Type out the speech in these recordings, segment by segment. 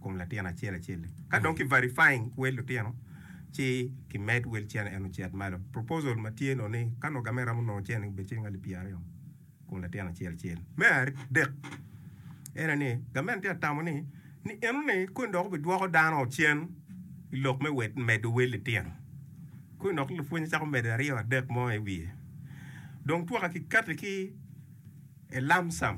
kom latin acel acel ka dong ki verifying wel lutino ci ki med wel cene eno cet malo proposal ma tye nongo ni ka nongo gamen ramo nongo cene obed ciling alip pyer aryo kom latin acel acel me adek ene ni gamen tye atamo ni ni eno ni koni dok obi dwoko dano cen i lok me wet medo wel litino koni dok lupwony cako medo aryo adek mo i wiye dong twaka ki kati ki a lump sum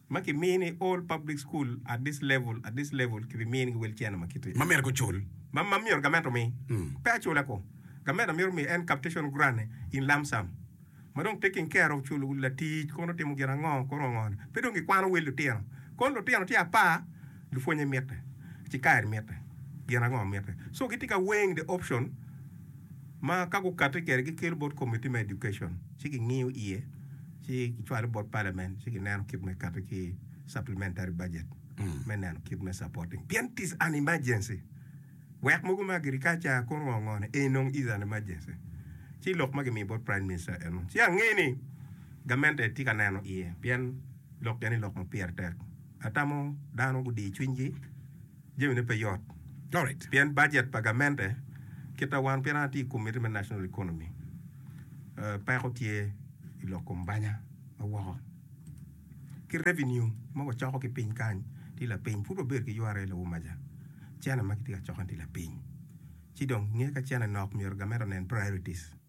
Ma ki mini i all public school at this level at this level ki bi mini ki wheelchair na ma kit ma myero ki cul. Ma ma myero gament omi. Pe acula ko. Gament myero omi en captation grant in lump sum. Ma dong taking care of chul latic kono otimo gin ango kono ango ni. Pe dong ki kwano wel lutino. Kono lutino tye apar, lupwonye mitte, ci kaer mitte, gin ango mitte. So gitye ka weighing the option ma ka gukati kwede gi kelo bot committee me education ci gi ngiyo iye. ci kicwale bot Parliament ci gineno kit me kati ki supplementary budget me neno kit me supporting pien tis an emergency wek mogo me agriculture ko ngo ngo ni ee nong is an emergency ci lok ma gimiyo bot Prime Minister eno ci ange ni gamente tye ka neno iye pien lok geni lok ma pire tek atamo dano gudiyo cwinygi jamine pe yot pien bajet pa gamente kita wan pien an atye i komitti me national economy peko tye i lok kom banya ma woko ki revenue ma wacoko ki piny kany tye lapiny pud wabedo ki yware i lawomaja cene ma kitye ka coko ni tye lapiny ci dong nge ka cene nok myero gamente onen priorities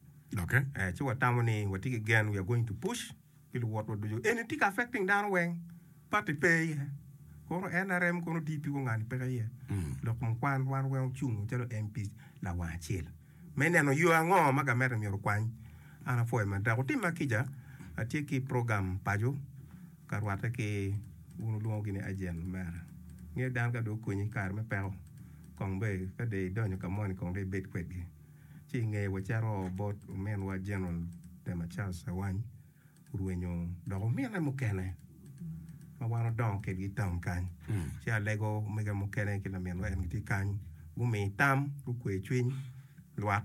ci watamo ni watye ki gen we are going to push. pi luwotwa ducu. Eni tika affecting dano weng? Party pe iye. Kono nrm kono tye piko ngani peke iye. Lok ma kwan wan weng ocung macalo MPs lawang acel me neno yo ango ma gamente myero okwany. An apwoyo ma dok otim ma kica atye ki program paco ka rwate ki wun olwongo gini agent omera. Ngeyo dano ka dong okonyi i kare me peko kong dong ka dong idonyo ka moni kong dong ibed kwedgi. ci i ngeye wacito bot ominwa General Pema Charles Awany orwenyo dok omine mukene ma wan odongo kedgi i taun kany. Ci Alego omege mukene ki laminwa en gitye kany gumi tam gukwe cwiny lwak.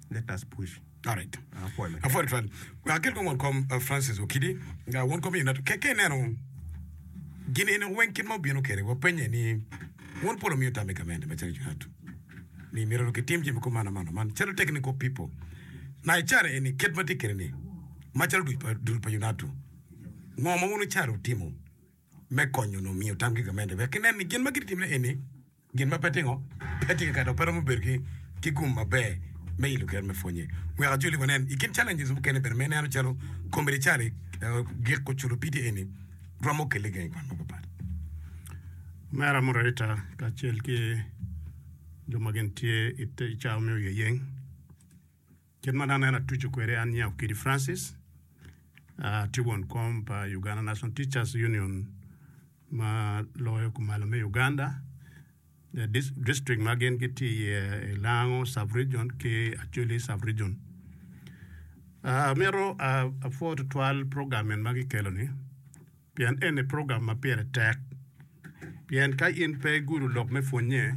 Let us push. Tarik. Apwoyo twal. Agir kong won kom uh, Francis Okidi. Uh, won kom ina keke ineno gin eno weng kit ma obino kede wapenye ni won polo miyo tam i gamente macalo Junatu ni mito kitim jami ko mano mano man calo technical people na icara eni kit ma tye kede ni macalo duc pa dul pa Junatu ngo ma wun icara utimo me konyo no miyo tam ki gamente wek inen ni gin ma gititimne eni Gin ma pe tingo pe tye ka kati dok pe romo bedo ki gum maber me ilo kero me pwonye. Wek ajoli wa nen, i kin challenges mukene bene ma ineno calo commerciale, giko culo pidi eni romo kelle gangi kwan mapat pat. Mer amuru adada kacel ki jo ma gin tye i cawa me oyeyeng Kit ma aneno atuco kwede an nyako kidi Francis, atye won kom pa Uganda National Teachers Union ma loyo kumalo me Uganda. District ma gin gitye iye i Lango sub region ki Acholi sub region. Amito apwoo tutwal program en ma kikelo ni. pien eni program ma pire tek pien ka in pe igudo lok me pwonnye,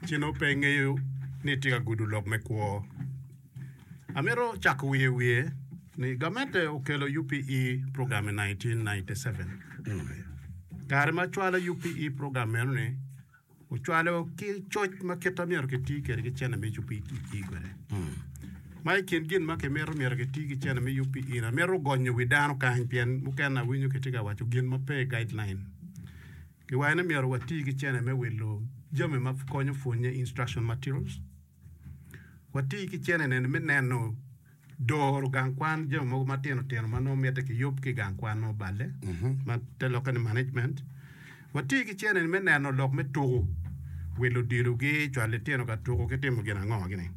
ci nongo pe ingeyo ni itye ka gudo lok me kwo. Amito cako wiye wiye ni gamente okelo UPE program i 1997. Kare ma acwalo UPE program meno ni, Ocwalo ki coc ma kite ma myero kiti kwede ki cene ma icuppi iti kwede. Ma i kin gin ma kimito myero kiti ki cene ma yuppi in amito gonyo wi dano kany pien mukene awinyo kitye ka waco gin ma pe guideline. Giwaco ni myero wati ki cene me wilo jami ma konyo pwonye, instruction materials. Wati ki ceneneni me neno doro gang kwan jami mogo matino tino ma nongo mitte kiyub ki i gang kwan ma oballe ma te lokke ni management. Wati ki ceneni me neno lok me tuku wi luditogi, cwalo litino ka tuku ki timo gin ango gini.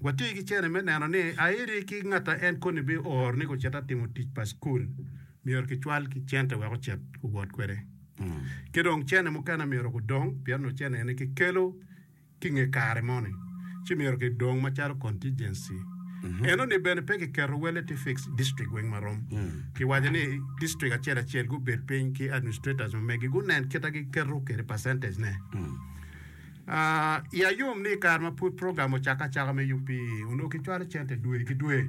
Wati ki ceneni me neno ni airi ki ngat ma en koni bioro ni gucit atimo tic pa cukul myero kicwal ki cente wek ocit owot kwede. Ki dong cene mukene myero gudong pien nongo cene eni kikelo ki i nge kare moni, ci myero kidong macalo contingency. Eno ni bene pe kiketo wele tye fixed district weng ma rom. Kiwaco ni district acel acel gubed piny ki administrators omegi gunen kita giketo kede percentage ne. Ah, ya yom ni i kare ma pud program ocakke acaka me UPE, onongo kicwalo cente dwe ki dwe.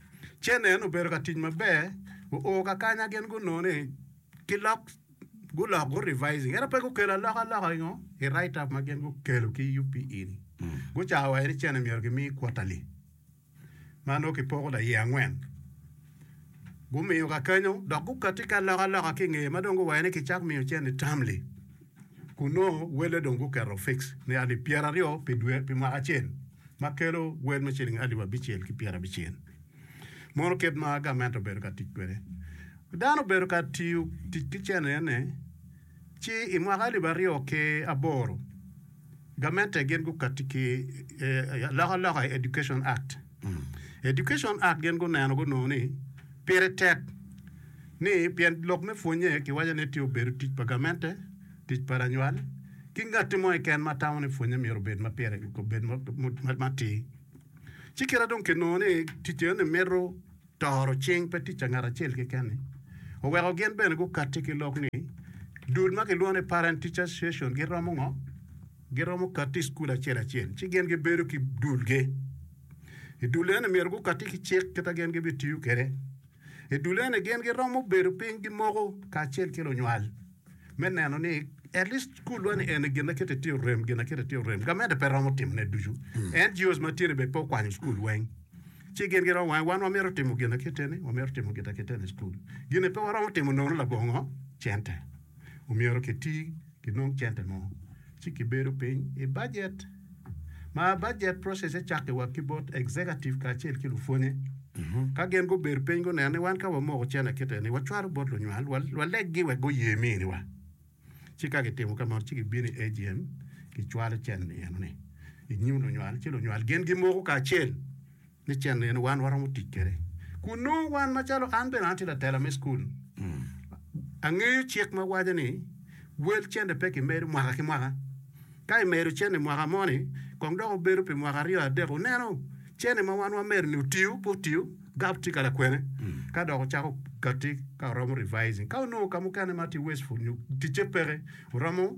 Cenen obedo ka tic maber, oo ka kanya gin gunongo ni ki lok gulok gu revising ento pe gukelo aloka loka ingo i write up ma gin gukelo ki UPE ni gucako waco ni cene myero ki mi quarterly ma nongo ki poko laye angwen gumiyo ka kenyo dok gukati ki aloka loka ki ngeye ma dong guwaco ni ki cak miyo cene termly kun nongo welle dong guketo fix ni alip pyera aryo pi dwe pi mwaka acel ma kelo wel me ciling alip abicel ki pyera abicel mono kit ma gament obedo ka tic kwede. Dano obedo ka tiyo tic ki cene ene ci i mwaka alip aryo ki aboro gamente gin gukati ki alokaloka i Education Act. Education Act gin guneno gunongo ni pire tek ni pien lok me pwonye kiwaco ni tye obedo tic pa gamente, tic pa lanywal ki ngatti mo keken ma tamo ni pwonye myero obed ma pire obed matir. Ci kite dong kinongo ni ticce ni mito Toro cing pe tic pa ngat acel keken-ni oweko gin bene gukatti ki lok ni dul ma kilwongo ni Parent Teacher Association giromo ngo? Giromo katti i cukul acel acel ci gin gibedo ki dulgi. I dul eni myero gukatti ki cik kita gin gibitiyo kwede. I dul eni gin giromo bedo piny gimoko kacel ki lunywal. me neno ni at least skulwa ni eni gin akete tye orem gin akete tye orem gamente pe romo timone ducu mm. en jios ma tyene bene pe okwanyo skul weng ci gin giro wange wan wamito timo gin aketeni wamito timo gin aketeni skul gine pe waromo timo nono labongo cente omyero kiti kinong cente mo ci kibedo piny i bajet ma bajet process-se cakke wa ki bot executive kacel ki lupwonye. Ka gin gubedo piny guneno ni wan ka wamoko cen akite ni wacwalo bot lunywal, waleggi wek guye miniwa. Ci ka gitimo ka meno ci gibino i AGM gicwalo cen-ni eno-ni i nyim lunywal, ci lunywal gin gimoko kacel. ni cen en wan waromo tic kwede kun nongo wan macalo an bene atye latela me cukul angeyo cik ma waco ni wel cene pe kimedo mwaka ki mwaka ka imedo cene mwaka mo ni kong dok obedo pi mwaka aryo adek oneno cene ma wan wamedo ni otiyo pe otiyo gab tye kala kwene ka dok ocako kati ka oromo revising ka onongo ka mukene ma tye wasteful nyo ticce peke oromo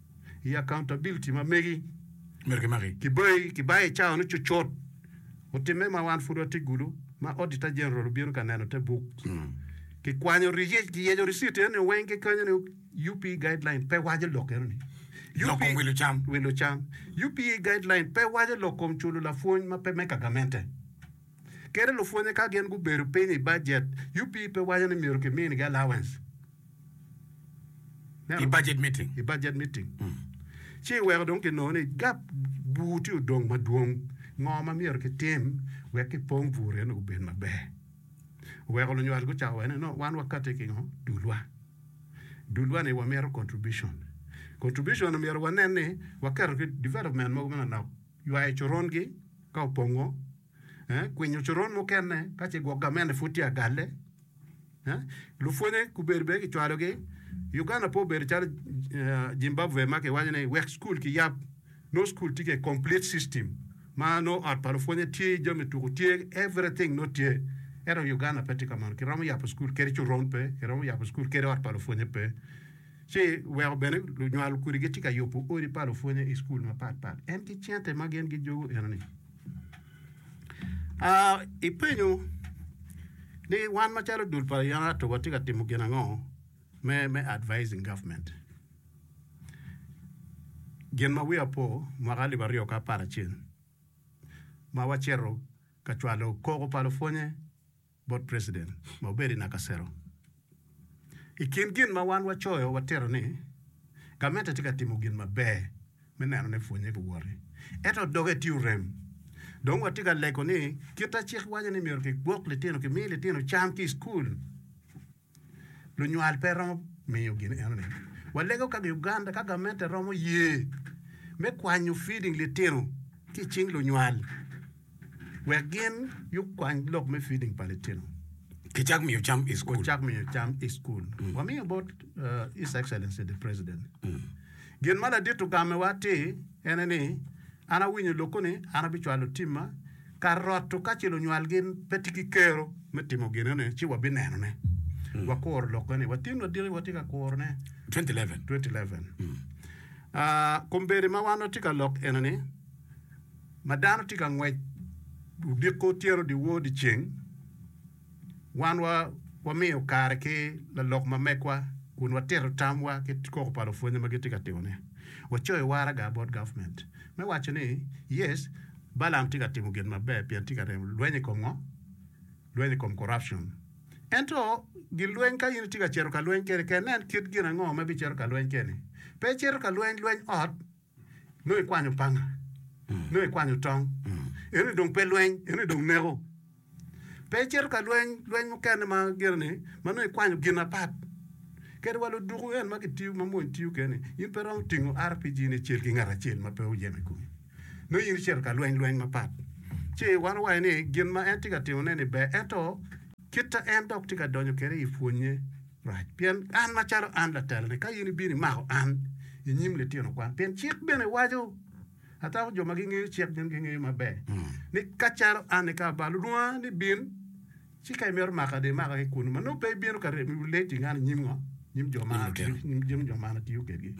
i accountability ma megi myero kimaki. Kibayi kibayi i cawa ni cucut otimme ma wan pud watye gudo ma Auditor General obino ka neno te buk ki kwanyo riyec ki yeco receipt eno ni weng ki kwanyo ni UP guideline pe waco lok eno ni Lok kom wilo cam. wilo cam. UP guideline pe waco lok kom culo lapwony ma pe me kagamente. kede lupwonye ka gin gubedo piny i bajet, UP pe waco ni myero kiminigi allowance i bajet meeting, ci iweko dong kinongo ni gap bur tye odong madwong. Ngo ma myero kitim wek kipong bur eno obed maber? Oweko lunywal gucako waco ni no wan wakati ki ngo? Dulwa. Dulwa ni wamito contribution. Contribution omyero wanen ni waketo ki development mogo manonok. ywayo corongi ka opongo, kwinyo coron mukene ka ce gwok gamente pud tye agalle. Lupwonye gubedo bene kicwalogi. Uganda pe obedo calo Zimbabwe ma kiwaco ni wek cukul kiyab, nongo cukul tye kede complete system ma nongo ot pa lupwonye tye, jami tuku tye, everything nongo tye. Ento Uganda pe tye ka mano, kiromo yabo cukul kadi coron pe, kiromo yabo cukul kadi ot pa lupwonye pe. ci weko bene lunywal kodi gitye ka yubo odi pa lupwonye i cukul mapat pat en ki cente ma gin gijogo enoni aa ipenyo ni wan macalo dul pa yam ato watye ka timo gin ango me me advising government gin ma wiya po mwaka alip aryo ki apar acel ma wacito ka cwalo koko pa lupwonye bot president ma obedo i Nakasero. I kin gin ma wan wacoyo watito ni gamente tye ka timo gin maber me neno ni pwonye giwoti, ento doge tye orem. Dong watye ka lego ni kit ma cik waco ni myero kigwok litino, kimi litino cam ki i cukul. Lunywal pe romo miyo gin enoni. Walego kaka Uganda ka gamente romo ye me kwanyo feeding litino ki i cing lunywal wek gin yub kwany lok me feeding pa litino. Ki cak miyo cam i school. Cak miyo cam i school. Mm. Wamiyo bot uh, His Excellency the President. Mm. Gin ma ladito gamewa ti ene ni an awinyo loko ni an abicwalo timma ka roto ka ce lunywal gin pe tye ki kero me timo ginone ci wa bineno ne wa kuro lok gani wa tin wa diki wa tye ka kuro ne 2011 2011 ah kombedi ma wan wa tye ka lok eno ni ma dano tye ka ngwec diko tyeno di wor di ceng Wan wamiyo kare ki lalok ma megwa kun watito tamwa ki koko pa lupwonye ma gitye ka timone. Wacoyo waraga bot gavment me waco ni, Yes, Balaam tye ka timo gin maber pien tye ka ryemo lweny i kom ngo? Lweny i kom corruption. Ento gin lweny ka in itye ka cito ka lweny kene, ker nen kit gin ango ma ibicito ka lweny kene. Pe icito ka lweny lweny ot. Nongo ikwanyo panga, nongo ikwanyo tong. Eno ni dong pe lweny, eno ni dong neko. Pe icito ka lweny, lweny mukene ma gire ni ma nongo ikwanyo gin apat. Kadi wa luduku en ma kitiyo ma mony tiyo kene, in pe romo tingo RPG ni icel ki ngat acel ma pe oyeme kumi. Nongo in icito ka lweny lweny mapat. Ci wan owaco ni gin ma en tye ka timone ni ber ento Kita en dok tye ka donyo kwede i pwonye rac. Pien an macalo an latalane, ka in ibino imako an i nyim litino kwan, pien cik bene waco, atamo jo ma gingeyo cik gin gingeyo maber, ni ka calo an nika ba lulwonga ni bin, ci ka imito maka de imaka ki kunu, ma nongo pe ibino ka remo iwi lec ingani i nyim ngo? Nyim jo ma an atiyo kedgi.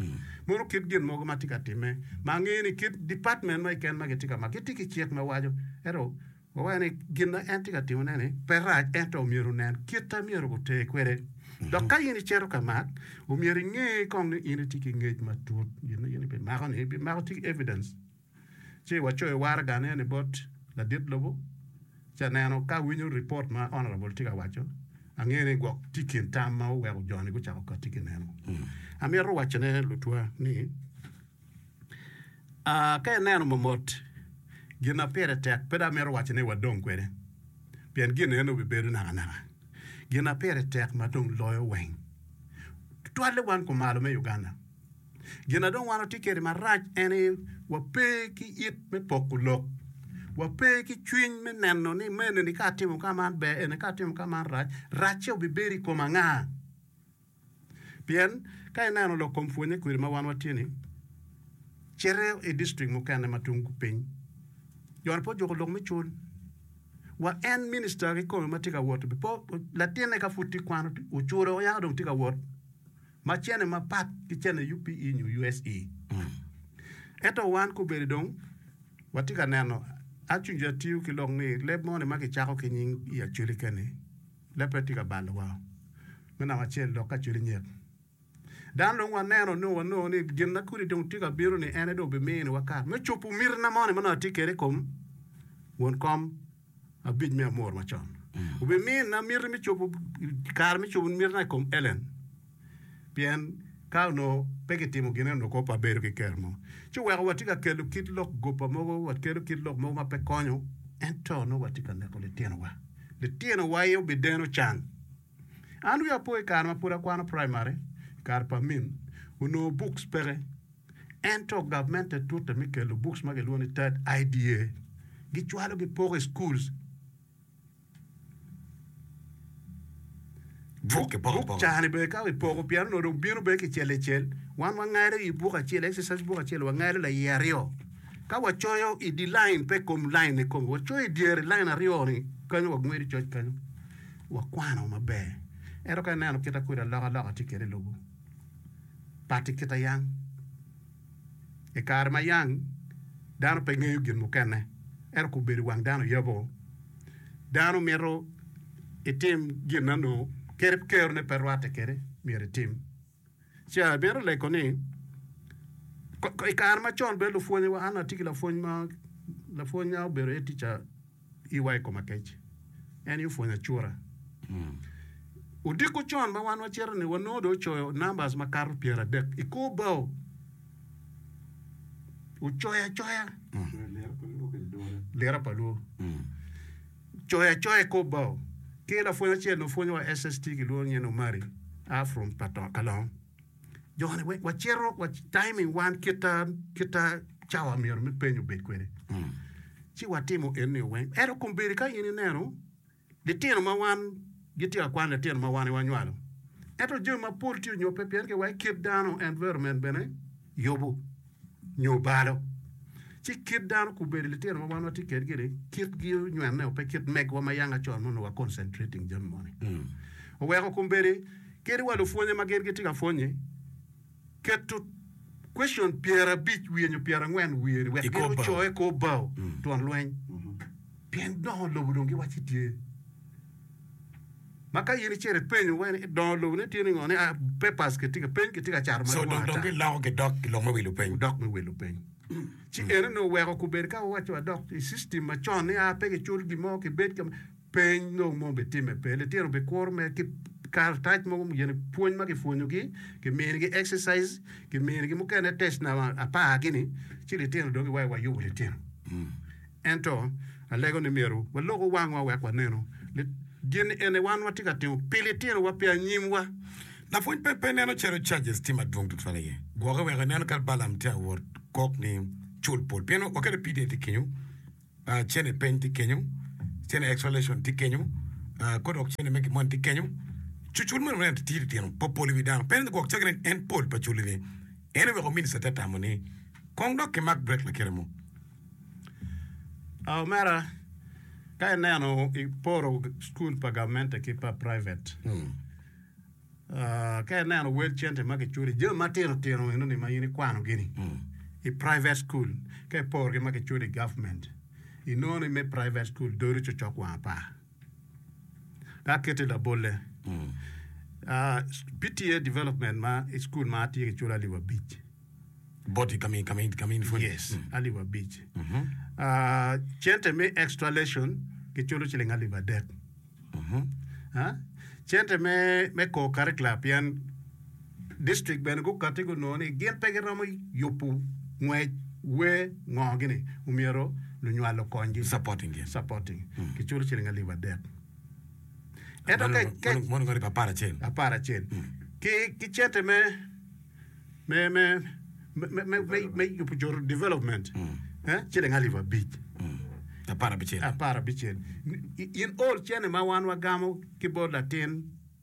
Mono kit gin mogo ma tye ka timme, ma angeyo ni kit department ma keken ma gitye ka mako, gitye ki cik ma waco, ento Wawaco ni gin ma en tye ka timone-ni pe rac, ento omyero onen kit ma myero guter kwede. Dok ka in icito ka mak, omyero inge kong ni in itye ki ngec matut. Gin ma in ibimakoni, ibimako ci evidence, ci wacoyo waragane ni bot ladit lobo, ci aneno ka awinyo ripot ma honourable tye ka waco, angeyo ni gwok tye i kin tam ma oweko jo-ni gucako kati ki neno. Amito wacone lutwa ni. Ka ineno momot gin ma pire tek, pe dong amito waco ni wadong kwede, pien gin eno bibedo nakanaka. Gin ma pire tek ma dong loyo weng, tutwalle wan kumalo me Uganda, gin ma dong wan watye kwede marac en aye wape ki it me poko lok, wape ki cwiny me neno ni me enini ka atimo ka man ber, eni ka atimo ka man rac, racce obibedo i kom anga? Pien, ka ineno lok kom pwonye kwiri ma wan watye-ni, cito i distrik mukene ma tung piny, Jon pe ojuko lok me cul. Wa en minista kikome ma tye ka wot pe o, latinne ka pud tye kwano, ocuro yaka dong tye ka wot ma cene mapat ki cene UPE nyo USE. Ento wan kobedi dong watye ka neno, acunge atiyo ki lok ni leb mo-ni ma kicako ki nying i Acholi kene, Leppe tye ka balowa me namba acel dok ka cwidi nyek. Dano dong waneno nio wanongo ni gin ma kodi dong tye ka bino ni en aye dong bimini wa kare me cubu miti na moni ma nongo atye kede ikom won kom abic me amor macon. Obimina miti me cubu kare me cubu miti na ikom Ellen. pien ka onongo pe kitimo gine onongo kop wabedo ki ker mo. Ci oweko watye ka kelo kit lok goba mogo, wakelo kit lok mogo ma pe konyo, ento onongo watye ka neko litinowa. Litinowa aye obideno can. An wiya opo i kare ma pud akwano praimari, i kare pa min, onongo buks peke. Ento gavment te tute me kelo buks ma kilwongo ni TED, IDA, gicwalo gipoko i schools. Buk ki bok bok cani bene ka wipoko pien onongo dong bino bene kicel licel. Wan wangalo i buk acel, exercise buk acel, wangalo laye aryo. Ka wacoyo i di lain, pe kom lain ni kom, wacoyo i dyere lain aryo ni, kanyo wagwedo coc kanyo. Wakwano maber. Ento ka ineno kita kodi aloka aloka tye kede i lobo. Pati kita yang. I kare ma yang dano pe ngeyo gin mukene, ento kobedo i wang dano yabo, dano mito itim gin ma nongo kerone pe rwatte kwede myero itim. Ca mito leko ni i kare macon bene lupwonyewa, an atye ki lapwony ma obedo head teacher. iwa i kom akec. En aye opwonyo acura. Odiko con ma wan wacito-ni, wanongo dong ocoyo numbers makato pyeradek i kor bao. Ocoyo acoya. Lira pa Lwor. Ocoyo acoya i kor bao. Ki lapwony acel-ni opwonyowa SST kilwongo nying ni Omari, a from Kalong. Joni wacito wa timing wan kita kita cawa myero me penyo bed kwede. Mm. Ci watimo en ni weng. Ero kumbedi ka in ineno litino ma wan gitye ka kwan litino ma wan iwanywalo. Ento jami mapol tye onyope pien ke wa i kit dano environment bene yubu, nyo balo. Ci kit dano kubedo litino ma wan watye kedgi ni kit gi onywene o pe kit megwa ma yanga con ma onongo wa concentrating jami moni. Oweko kumbedi kadi wa lupwonye ma gin gitye ka pwonye keto question pyera abic wiye nyo pyera angwen wiye ni wek gin ocoye kor bao twon lweny pien dongo lobo dong giwaci tye. Ma ka in icito ipenyo wene i dongo lobo ni tye ningo ni a papers ki tye ka peny ki tye ka cato ma So dong dong ata. giloko gidok ki lok me wilo peny. Dok me wilo peny. Ci eno ni oweko kubedo ka wawaco wa dok i system ma con ni a pe gicul gin mo ki bed ka ma peny nongo mo bi timme pe. Litino bi kuru me ki karatac mogo mo gin pwony ma ki pwonyo gi, ki mini gi exercise, ki mini gi mukene test na apar gini ci litino dong giwayo wa yubo litino. Ento, alego ni myero walok wangwa wek wanenu ni gin eni wan watye ka timo pi litinowa pi anyimwa. Lapwony pe pe neno calo charges tye madwong tutwal aye gwoke wek enen kadi Balaam tye awot kok ni cul pol pien waket ni PDA tye kenyo, cene peny tye kenyo, cene exhalation tye kenyo, kodok cene me gimoni tye kenyo. Cucul meno wene atir litino pe opol i wi dano. Pe ni gwok caggi nen en pol pa culi ni en oweko minister te tamo ni kong dok kimak break lakite mo. Omera, ka ineno iporo cukul pa gamente ki pa private, hmm. ah, ka ineno wel cente ma kiculi, jami matino tino eno ni ma in ikwano gini, hmm. i private school, ka iporo ki ma kiculi government, inoni me private school dori cocok wang apar. Ka aketi labolle, ah, PTA development ma i school ma atye ki culo alip abic. Boti kami kami kami ni fwony. Yes, alip abic. Ah, cente me extra lesson giculo ciling alip adek. Ah, cente me me co-curricular pien District bene gukati gunongo ni gin pe giromo yubu ngwec wer ngo gini omyero lunywal okony gi supporting ki culo ciling alip adek ento ka mono alip apar acel ki cente me me me me yubu coto development ciling alip abic apar abicel in all cene ma wan wagamo ki bot latin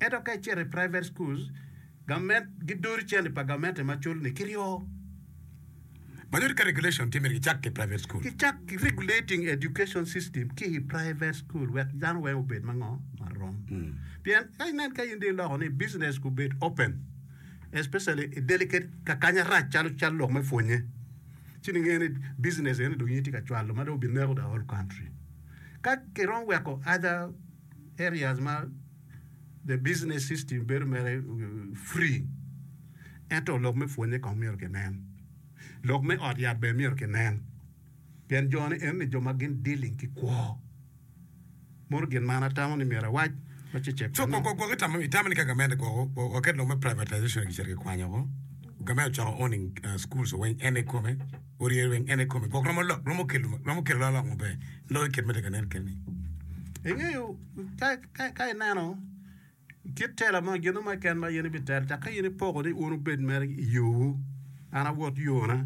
Ento ka icito i private schools, government gidodo cente pa government ema culo ni kiryo. Madit ka regulation tye myero gicak ki private school. Gicak ki regulating education system ki i private school wek dano weng obed mango marom. Pien ka inen ka in dong iloko ni business gubed open especially i delicate kakanya rac calo cal lok me pwonye ci ningeyo ni business eni dong in itye ka cwalo ma dong obineko the whole country. Ka kiromo weko other areas ma the business system bedo mere free ento lok me pwonye kong myero kinen, lok me ot yat bene myero kinen pien jo ni eni jo ma gin dealing ki kwo mono gin ma an atamo ni myero awac ma ce cek So, kwo- kwo- kwo- itamo- itamo ni ka gamente kwo- kwo- kwo- waket lok me privatization kicito kikwanyo oko, gamente ocoko owning uh, schools owiny, en ikome? orye rweny en ikome gwok romo lok romo kelo romo kelo lok maber lok i kit ma tye ka nen keni ingeyo ka ka ka ineno tye tela mo gin mo keken ma in ibitel cak ka in ipoko ni un obed mere i yowu an awot yona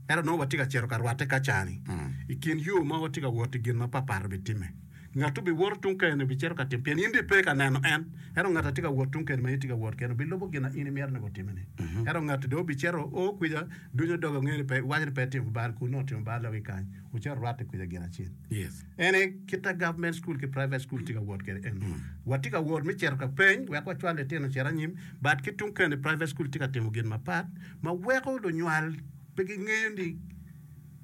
ento nongo watye ka cito ka rwatte ka cani i kin yo ma watye ka wot i gin ma papat obitimme Ngat-tu biwoto tung kene, bicito ka tim, pien in bipe ka neno en. Ento ngat a tye ka wot tung kene ma in itye ka wot kene, bilubo gin a in imito ni gutimini. Ento ngat-tu dong bicito, o kwica, dunyo doge, ongeyo ni pe, iwaco ni pe itimo bal kun nongo timo bal dok ikany, wucito rwate kwica gin acel. En aye kit a government school ki private school tye ka wot kwede eni. Watye ka wot me cito ka peny wek wacwal litino ocit anyim, but ki tung kene private school tye ka timo gin mapat ma weko lunywal pe gingeyo ni,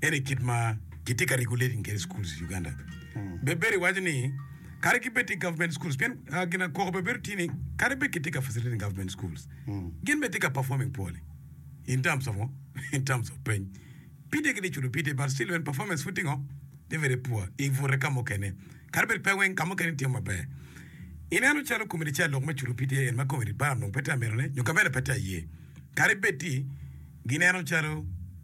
En i kit ma kitye ka regulating kede schools i Uganda. Be Berry waco ni kadi ki bed tye government schools pien ah, gin akoko be bedo tye ni kadi bed kitye ka facilitating government schools gin be tye ka performing poorly in terms of ngo? in terms of peny pide kede cudo pide but still when performance pud tye ngo? tye very poor i bute ka mukene kadi bed pe weng ka mukene tye maber ineno calo committee chair lok me cudo pide en ma committee bara nongo pe tye ka mitone nyo ka meno pe tye aye kadi bed tye gineno calo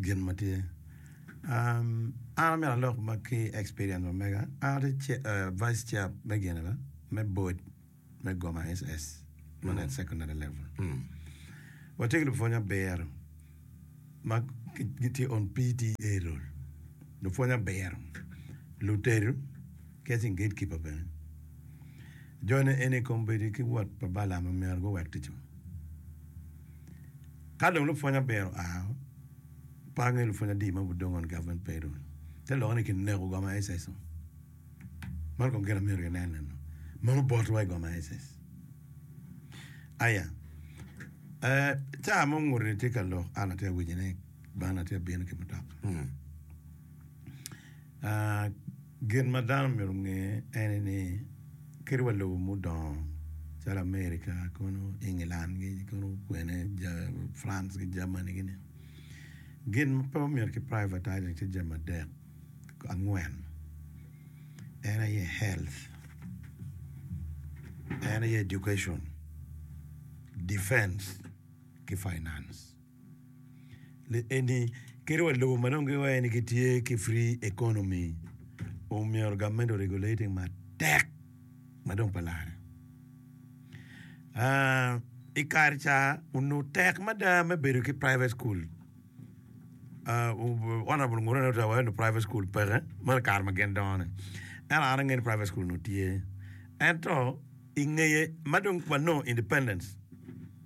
gin ma tye an amyero alok ma ki experience ma mega an atye vice chair me gine ba me board me goma SS ma net secondary level watye ki lupwony abiro ma gitye on PTA role lupwony abiro lutedo ki aceng gatekeeper bene jone eni kombeddi ki wot pa Balam omyero guwek ticwa. Ka dong lupwonnya biro oa, par ni lupwonnya adi ma budong on government payroll te lokke ni kineko goma SS o? Man kong gina myero inen nen o. Meno bot wa i goma SS. Aya, eh, caa mo nguti ni tye ka lok an atye awico ni bana atye abino ki mutoka. Ah, Gin ma dano omyero onge ene ni kadi wa lobo mudongo calo America kono England gi kono kwene France ki Germany gini gin ma pe omyero ki privatizing tye jami adek angwen en aye health, en aye education, defence ki finance. eni kit wa lobo ma nongo giwaco ni gitye ki free economy omyero gavment o regulate matek ma dong pa lare i kare ca onongo tek mada me bedo ki private school honourable ngure ni owaco ni private school peke mere kare ma gin dongo ni ento an angeyo ni private school onongo tye ento ingeye ma dong wanongo independence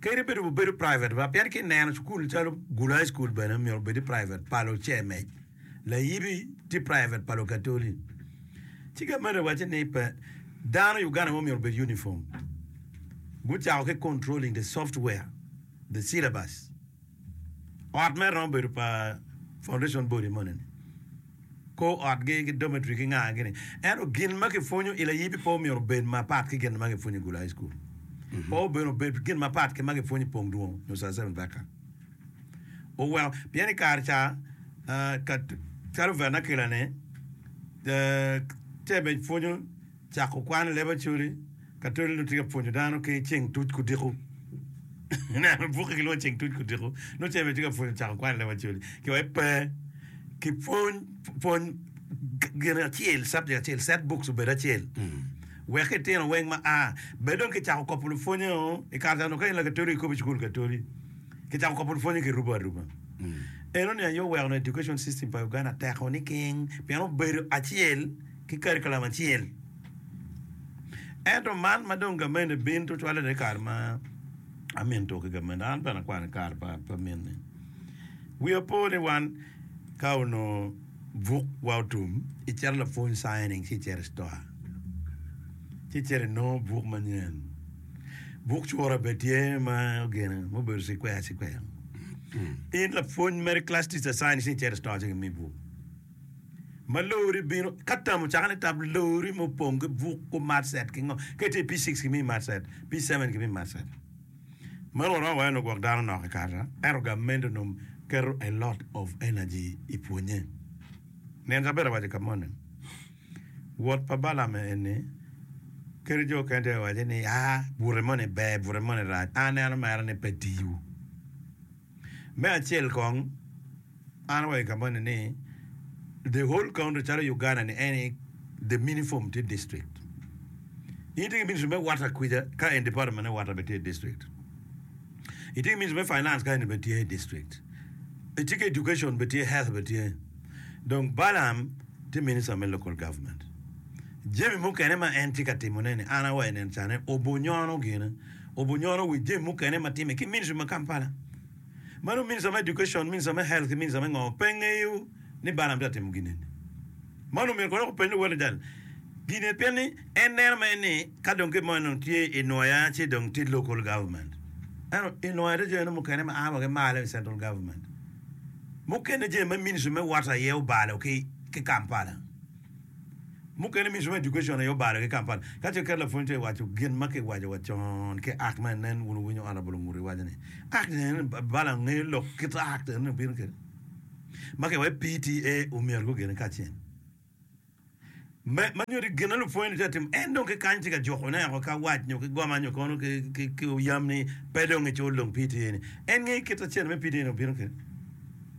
Kadi bed obedo private ma pien ki neno cukul calo Gulu High School bene myero obedi private pa lucemec, layibi tye private pa Lukatoli. Ci gamen iwacci ni pe dano Uganda mo myero obed uniform. Gucako ki controlling the software, the syllabus. Ot mere romo bedo pa foundation body moni-ni, kor otgi ki dormitory ki ngagi-ni. Ento gin ma kipwonyo i layibi pe omyero obed mapat ki gin ma kipwonyo i Gulu High School. Pe omyero obed gin mapat ki ma kipwonyo i Pong Dwong nyo South Seven Vector. Oweko pien i kare ca ah, ka calo vernacular-ni, eh, tebe pwonyo cako kwan i laboratory, Ka toli onongo tye ka pwonyo dano ki ceng tuc ki odiko, ineno bukke gilwongo ceng tuc ki odiko, nongo ceng bene tye ka pwonyo cako kwan i lela pa col-li. Ki wai pe ki pwony pwony gin acel subject acel set books obed acel wek itino weng ma a bed dong kicako kopo lupwonye-o i kare ca onongo ka in lakatoli ikobo i cukul katoli kicako kopo lupwonye kirubo aruba. Enoni aye oweko ni education system pa Uganda teko niking pien obedo acel ki curriculum acel. Ento man ma dong gameni bin tutwalere i kare ma amin to ki gameni, an bene akwano i kare pa amini. Wiya po ni wan ka onongo buk wa otum, icito lapwony signing ci icito i store ci icito inongo buk manyen. Buk cura bene tye ma ogene ma obedo cikweya cikweya. In lapwony mere class teacher signing ci icito i store ci gimiyi buk. ma lori bino ka tamo caka ni tab lori ma opong ki buk ku matset ki ngo ka itye i P6 kimi matset P7 kimi matset ma rwot romo wayo ni ogwok dano nok i kare ento gamente onongo keto a lot of energy i pwonye nino caber awaco ka moni wot pa Balam eni kadi jo okene tye ka waco ni a bute moni ber bute moni rac an aneno mere ni pe tiyo Me acel kong, an awaco i kabonde ni the whole country calo Uganda ni any the minifom tye district. In itye ki ministry me water kwica ka en department me water bene tye district. Itye ki ministry me finance ka eni bene tye district. Itye ki education bene tye, health bene tye. Dong Balaam tye minister me local government. Jami mukene ma en tye ka timone ni an awaco nen cane obonyono gine. Obunyoro wi jami mukene ma time ki Ministry ma Kampala. Mano Minister me Education, Minister me Health ki Minister me ngo pe ngeyo ni Balaam tye ka timo gin eni? Mano omyero kono openy luwotgi tal gin eni pien ni en neno mere ni ka dong kit mo en dong tye i Nwoya ci dong tye Local Government. Ento i Nwoya tye jami mukene ma a wa ki malo i Central Government. Mukene jami ma Ministry me Water aye obalo ki Kampala. Mukene Mission Education aye obalo ki Kampala ka ce ker lapwony to i waco gin ma ki waco wa con ki Act ma nen wun wunyo Honourable Ongutu iwaco ni Act ni en balo angeyo lok kit Act eni obino kede ma ki waco PTA omyero gu gene kacen me ma nyodi gin na lupwony ni tye ka timo en dong ki kany tye ka juko ne oko ka wac nyo ki goma nyo kono ki ki ki oyam ni pe dong i cul dong PTA ni en ngeyo kit acel me PTA ni obino kede.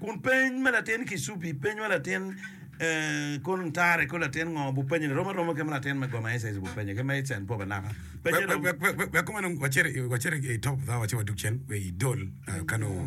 Kun peny ma latin Kisubi penyo latin Kol Ntare ko latin ngo bupenyone rom aroma ki ma latin me goma SS bupenyo ki ma its and pop anaka. Penye rom. Wek kumeno wacit wacit i top thawa ci wadug cen i dol kano.